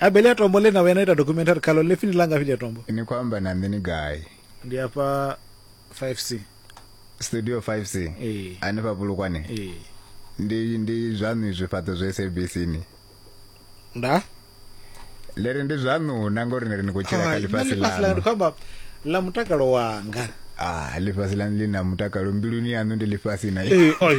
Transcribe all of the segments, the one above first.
A bele ya tombo ḽe na vhuya na ita documentary khaḽo ḽe fini langa fhili ya tombo. Ni khou amba na nṋe ni gai? Ndi afha 5C. Studio 5C? Ee. Hanefha Bulukwane? Ee. Ndi ndi zwaṋu izwi fhaṱo zwa SABC ni? Nda? Ḽi ri ndi zwaṋu na ngori ni ri ni khou tshila kha ḽifhasi ḽaṋu. Ḽifhasi ḽaṋu ndi khou amba ḽa mutakalo wanga. Ah, ḽifhasi ḽaṋu ḽi na mutakalo mbiluni yaṋu ndi ḽifhasi na. Ee, oi.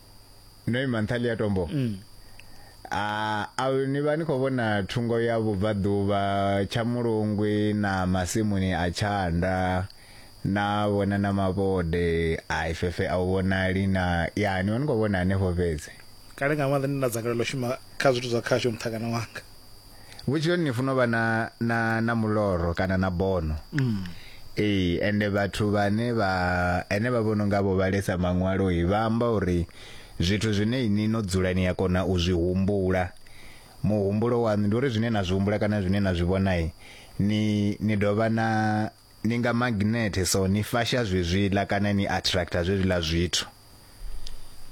no ima nṱhali ya tombo mm. a a ni vha ni khou vhona thungo ya vhubvaḓuvha tsha mulungwi na masimuni a tshanda na vhona na mavhode a ifefe a u vhonali na ya ni vha ni khou vhona hanefho fhedzi kale nga maanḓa ndi na dzangalelo shuma kha zwithu zwa khasho nṱhangana wanga vhutshiloni ni funa u vha na na na muloro kana na bono mm. ee ende vhathu vhane vha ene vha vhono nga vho vhalesa maṅwalo i vha amba uri zwithu zwine ini no dzula ni ya kona u zwi humbula muhumbulo waṋu ndi uri zwine na zwi humbula kana zwine na zwi vhonai ni ni dovha na ni nga maginethe, so ni fasha zwezwiḽa kana ni attractor zwezwiḽa zwithu.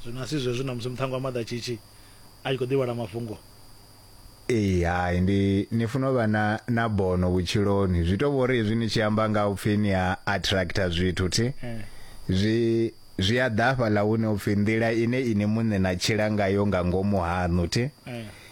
Zwino a si zwezwo ṋamusi muṱhannga wa maḓatshishi a tshi khou ḓi vhala mafhungo? Ee, hai, ndi, ni funa u vha na, na bono vhutshiloni. Zwi tou vha uri hezwi ni tshi amba nga u pfi ni a attractor zwithu, thi, zwi, zwi a ḓa hafhaḽa hune u pfi nḓila ine inwi muṋe na tshila ngayo nga ngomu haṋu, thi.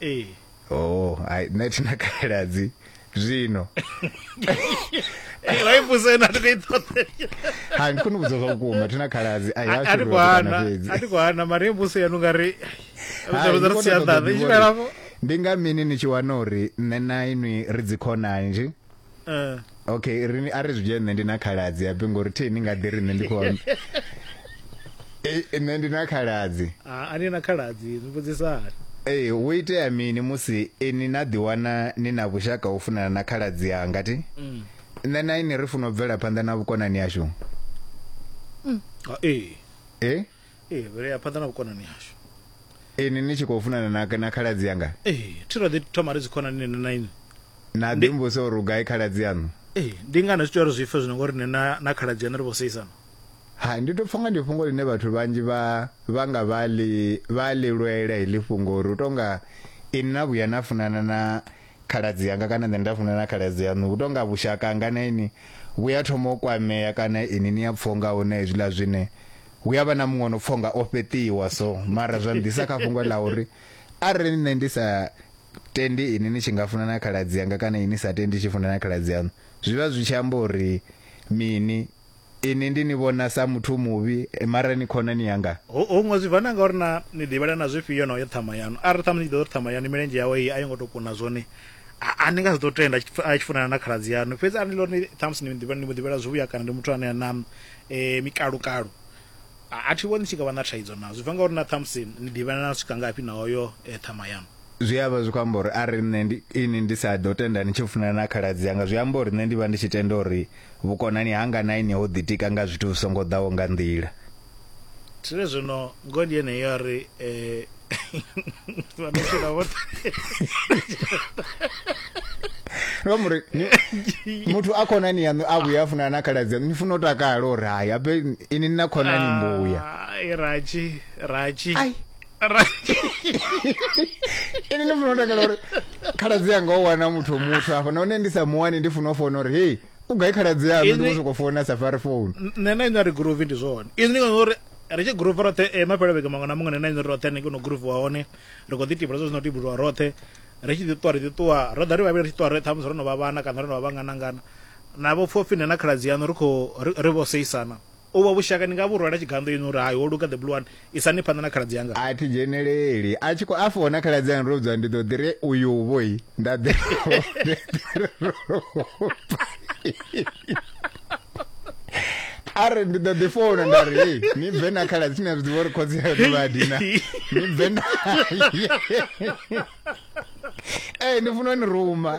ee oh ai nṋe thi na khaladzi zwino laifusena ti khou i ṱoḓe ha ndi kone u vhudza zwa vhukuma thi na khaladzi ai ha a ti khou hana a ti khou hana mara i mbuso yanu nga ri vhudza ri si ya ḓaḓa i tshi fhelafho ndi nga mini ni tshi wana uri nṋe na inwi ri dzikhonani nje Eh. okay rini a ri zwi dzhie nṋe ndi na khaladzi ya pingo ri theni nga ḓi ri nṋe ndi khou amba Eh, nṋe ndi na khaladzi Ah, a ni na khaladzi ni vhudzisani ee hu itea mini musi ini na ḓiwana ni na vhushaka ho funana na khaladzi yanga ti Mm. nṋe na ini ri funa u bvela phanḓa na vhukonani yashu Ah, ee e ee vhea phanḓa na vhukonani hashu ini ni tshi khou funana na, na khaladzi yanga ee thi ro ḓi thoma ri dzikhonani nene na ini na ḓi mbusa uri u gai khaladzi yaṋu ee ndi ngani zwi tea uri zwi pfe zwino ngori nṋe na, na khaladzi yaṋu ri vho seisana ha ndi tou pfha nga ndi fhungo ḽine vhathu vhanzhi vha vha nga vha ḽi vha ḽi lwela heḽi fhungo uri u tou nga ini na vhuya na funana na khaladzi anga kana nṋe nda funana na khaladzi yaṋu hu tonga vhushaka hanga na ini vhu ya thoma u kwamea kana ini ni ya pfha unga huna hezwiḽa zwine hu ya vha na muṅwe no pfha unga o fheṱiwa so mara zwa nḓisa kha fhungo ḽa uri arali nṋe ndi sa tendi ini ni tshi nga funana na khaladzi anga kana ini sa tendi tshi funana na khaladzi yaṋu zwi vha zwi tshi amba uri mini Inwi ndi ni vhona sa muthu muvhi, mara ni khonani yanga. Hu, huṅwe zwi bva na nga uri naa ni ḓivhelana zwifhio na u ya ṱhama yaṋu. Arali ṱhamusi ni tshi ḓivha uri ṱhama yaṋu milenzhe yawe iyi a yo ngo tou kuna zwone, a, a ni nga si ḓo tenda a tshi, a tshi funana na khaladzi yaṋu. Fhedzi arali ni ḽa uri ni, ṱhamusi ni, ni mu ḓivhela zwivhuya kana ndi muthu ane a na e, mikalukalu, A, a thi vhoni ni tshi nga vha na thaidzo nazwo. Zwi bva nga uri na ṱhamusi ni ḓivhelana u swika ngafhi na oyo e ṱhama yaṋu. Zwi a vha zwi khou amba uri arali nṋe ndi, inwi ndi sa ḓo tenda ni tshi funana na khaladzi anga, zwi amba uri nṋe ndi vha ndi tshi tenda uri vhukonani hanga na inwi ho ḓitika nga zwithu zwi songo ḓaho nga nḓila. Tire zwino, ngoho ndi yeneyo a ri, E, no muri muthu a khonani yaṋu a vhuya a funana na khaladzi yaṋu ni funa u takala uri hayi ape ini na khonani ah, mbuya raji raji ini ni funa u takala uri khaladzi yanga o wana muthu muthu afha nahone ndi sa muwani ndi funa u fona uri hei u gai khaladzi yanu ndi soko founa safari phone nṋe na inori groove ndi zwone izwi ndi ngori ri tshi groove roṱhe eh, mafhelo vhege maṅwe na muṅwe nṋe na inori roṱhe hanengei no groove wa hone ri khou ḓi tibula zwo zwino tibuluwa roṱhe ri tshi ḓi ṱuwa ri ḓi ṱuwa ro ḓa ri vhavhili ri tshi ṱuwa ri ṱhamusi ro no vha vhana kana ro no vha vhanganangana na vho pfhofhi nṋe na khaladzi yanu ri khou ri vho seisana Uvho vhushaka ni nga vhu rwela tshiganḓo inwi uri, Hai, ho luga, The Blue One, isani phanḓa na khaladzi anga. A thi dzheneleli. A tshi khou a fona khaladzi anga ndo vhudzwa ndi ḓo ḓi ri uyuvho i, nda ḓi a ri ndi ḓo ḓi founa nda ri hei ni bve na khaladzi ni a zwi ḓivha uri khotsi ayo ndi vhadina ni bve naye ee ni funa ni ruma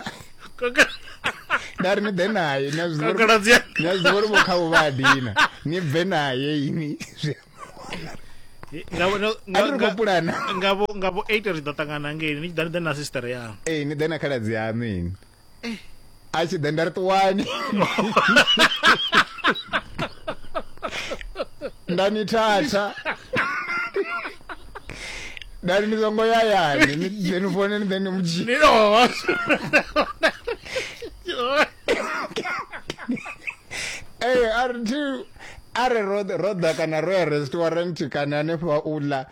nda ri ni ḓe naye ni a zwi ḓivha uri vho khavho vha a dina ni bve naye ini ngavho eight ri ḓo ṱangana ngei ni tshi ḓa ni ḓe na sister yanu ee ni ḓe na khaladzi yanu ini eh. a tshi ḓe nda ri ṱuwani nda ni thatha nda ri ni songo yayani ḓe ni fone ni ḓe ni mudzhii ee a ri thi a re roda kana ro ya restaurant kana hanefha u ḽa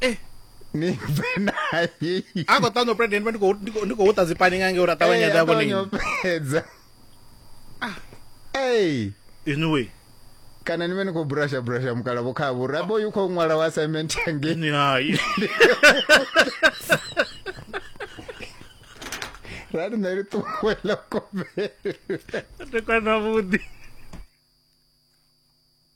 eh ni bve naye a khou ṱanḓa president vha ndi khou ndi khou ndi khou ṱa dzi pani nga ngei uri a ṱavhanya dza vhone fhedza ah hey in a way kana ni vhe ni khou brusha brusha mukala vho kha vhura bo yu khou ṅwala wa assignment yange ni hai rali nṋe ri ṱuwela kovhele ri kwana vhuḓi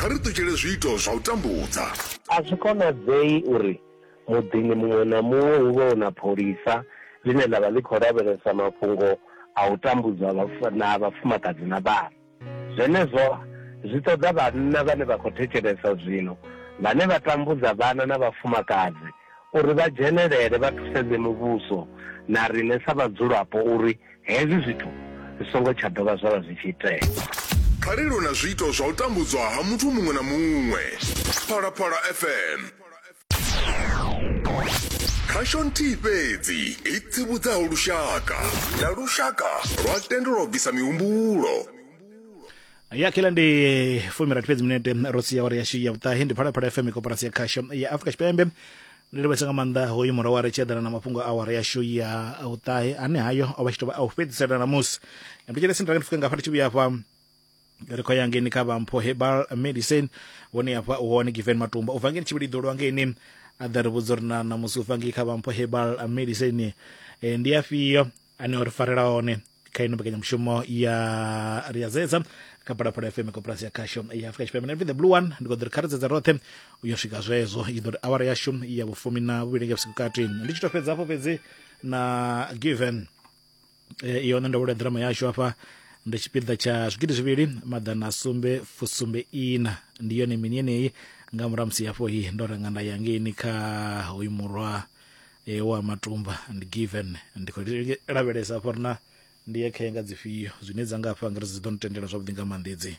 kha ri ṱutshele zwiito zwa u tambudza. A zwi konadzei uri muḓini muṅwe na muṅwe hu vhe hu na pholisa ḽine ḽa vha ḽi khou lavhelesa mafhungo a u tambudzwa ha vhafumakadzi na vhana. Zwenezwo zwi ṱoḓa vhanna vhane vha khou thetshelesa zwino vhane vha tambudza vhana na vhafumakadzi uri vha dzhenelele vha thusedze muvhuso na riṋe sa vhadzulapo uri Hezwi zwithu zwi songo tsha dovha zwa vha zwi tshi itea. Phalelo na zwiito zwa u tambudzwa ha muthu muṅwe na muṅwe. Phalaphala FM. Khasho nthihi fhedzi i tsivhudzaho lushaka na lushaka lwa tendelwa u bvisa mihumbulo. ya kila ndi fumirathi fhedzi minete ro sia uri yashu ya vhuṱahe ndi phalaphala fm koporasi ya khasho ya afrika tshipembe Ndo livhesa nga maanḓa hoyu murwa wa ri tshi eḓana na mafhungo a awara yashu ya vhuṱahe ane hayo o vha tshi tou vha a u fhedzisela ṋamusi ndi tshi lesi ndi rangi fuke nga hafha ndi tshi vhuya hafha ri khou ya ngeni kha vha mpho herbal medicine vhone hafha u hone given matumba u bva ngeni tshivhili ḓolwa ngeni a ḓa ri vhudza uri na ṋamusi u bva ngei kha vha mpho herbal medicine ndi afhio ane o ri farela hone kha ino mbekanyamushumo ya ri ya zedza kha phalaphala fm koporasi ya khasho ya afrika tshipembe nrv the blue one ndi kho ḓo ri kha ri dzedza roṱhe u yo swika zwezwo i ḓo ri awara yashu ya vhufumi na vhuvhili nga vhusiku kati ndi tshi to fhedza hafho fhedzi na given eh, iyo nṋe ndo vhulea ḓirama yashu hafha ndi tshipiḓa tsha zwigidi zwivhili maḓana sumbe fusumbe ina ndi yone mini yeneyi nga murahu ha musi hafho hi ndo renga nda ya ngeini kha hoyu murwa e wa matumba ndi given ndi khou lavhelesa afha ri na ndi ye khenga dzifhio zwine dza nga afha ngari dzi ḓo ntendela zwavhuḓi nga maanḓa edzi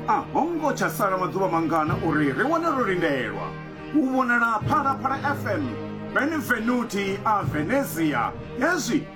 a ho ngo tsha sala maḓuvha mangana uri ri wane ro lindelwa u vhonala phalaphala fm benvenuti a venezia hezwi